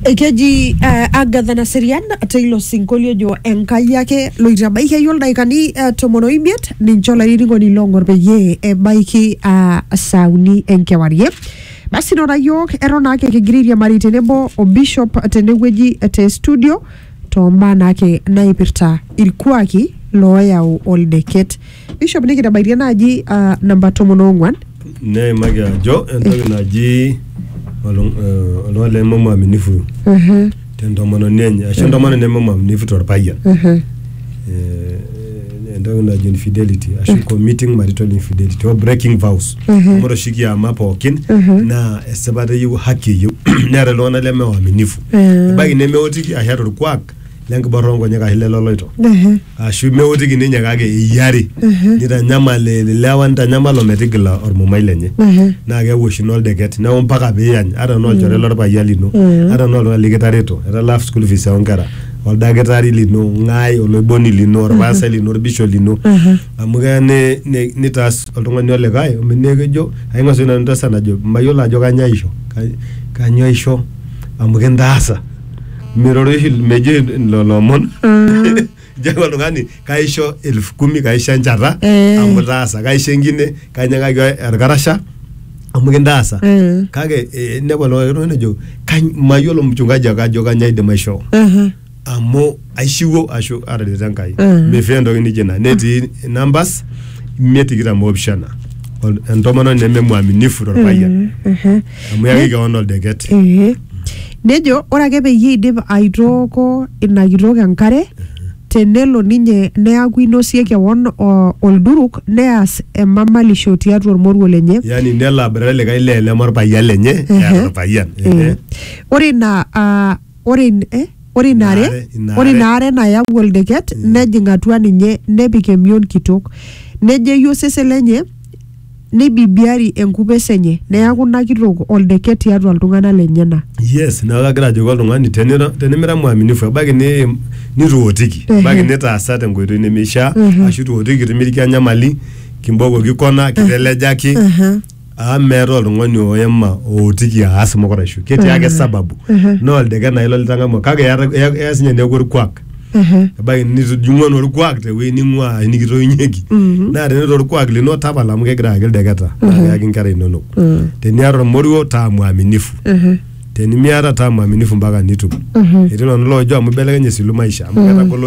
Ekeji uh, Agatha Naserian teilo sinkolio ojo Enkai ake loitabaikiaki oldaikani uh, tomon oimiet ninche olainining'oni loong'or peyie ebaiki uh, saa uni enkewarie. Basi nora yiok eton naake kigira airiamari tenebo o bishop tenewueji te studio toombaa naake naipirta ilkuaki looyau oldeket. Bishop nikitabaitie naaji ah, namba tomon oong'uan neimaki ajo entoki naji olung- eh, oltung'ani leme mwaminifu Mhm, tentomononi enye ashu entomononi neme mwaminifu torpayian mhm, Eh, entoki najo infidelity ashu committing marital infidelity or breaking vows Mhm. amu ore oshi kiama pookin Mhm. naa esipata eyieu haki eyieu neeta iltung'anak leme waaminifu Mhm. ebaiki nemeotiki ashu eeta orkuak lenkiborra onkonyek ashu leloloito mhm. ashu meotiki ninye kake eyiari nitanyamal ilewa nitanyamal ometigila ormumai lenye naa keeku oshi ina oldeket neeku mpaka piiyany ata enaa olchore lorpayian lino ata enaa oltung'ani likitareto etalaa school fees oonkera oldakitari lino ng'ae oloiboni lino orpastai lino orbishop lino amu keya ni- ni- nitaas oltung'ani olikae omi- neeku ejo aing'asie nanu entasat najo mayiolo ajo kanyoo aisho Ka- kanyoo aisho amu kintaasa miroroshi mejo lelo omon jaku oltung'ani kaisho elfu kumi kaisho enchata Eh. amu itaasa kaisho enkine kainyang'aki orkarasha amu kintaasa Eh. kake eh, inepu oltung'ani oltung'ani ojo "Kany- mayiolo mchungaji ake ajo kanya aidim aishoo Aha. amu aishiwuo ashu atarete enkai Mm. mifaa entoki nijo ina netii numbers imiet tikitam oopishana Ol- entomononi nememwaminifu torpayian Aha. amu yaki kewon oldeket Ee. nejo ore ake peyie idip aitooko ina kitok enkare tenelo ninye neaku inosie kewon o- olduruk neas emamalisho tiatua ormoruo lenye yani nelo aboitare likae lee leme orpayian lenye Ehe. eeta orpayian Ehe. Eh, ore ina ah, Ore, in, eh, ore ina are, Ina are- ina ore are- ina are nayau oldeket nejing atua ninye nepik emion kitok. Nejeyu osesen lenye neibibiari enkupes enye neaku ina kitok oldeket tiatua iltung'ana lenyena. yes neeku kagira ajoki oltung'ani tenira tenimira mwaminifu ebaiki ni nituotiki Ehe. ebaiki nitaasa tenkoitoi nemeishaa Ehe. ashu ituotiki itimirika enyamali kimbokoki kona kitelejaki Ehe. amu meeta oltung'ani oema ootiki aas mukuraisho ketii ake sababu naa oldeke naa ilo litang'amua kake eata- ea- eya sinye neeku orkuak Ehe. ebaiki nitijing'ua naa orkuak tewueji ning'ua ashu nikitoiunyieki naa tenaa orkuak lino tapala amu kegira ayaki ildeketa naa keyaki inkera inonok teniata ormoruo taa mwaminifu Ehe. tenimiata taa mwaminifu mpaka nitum etii iltung'anak loojo amu ibelekenye esilu maisha amu ketagolo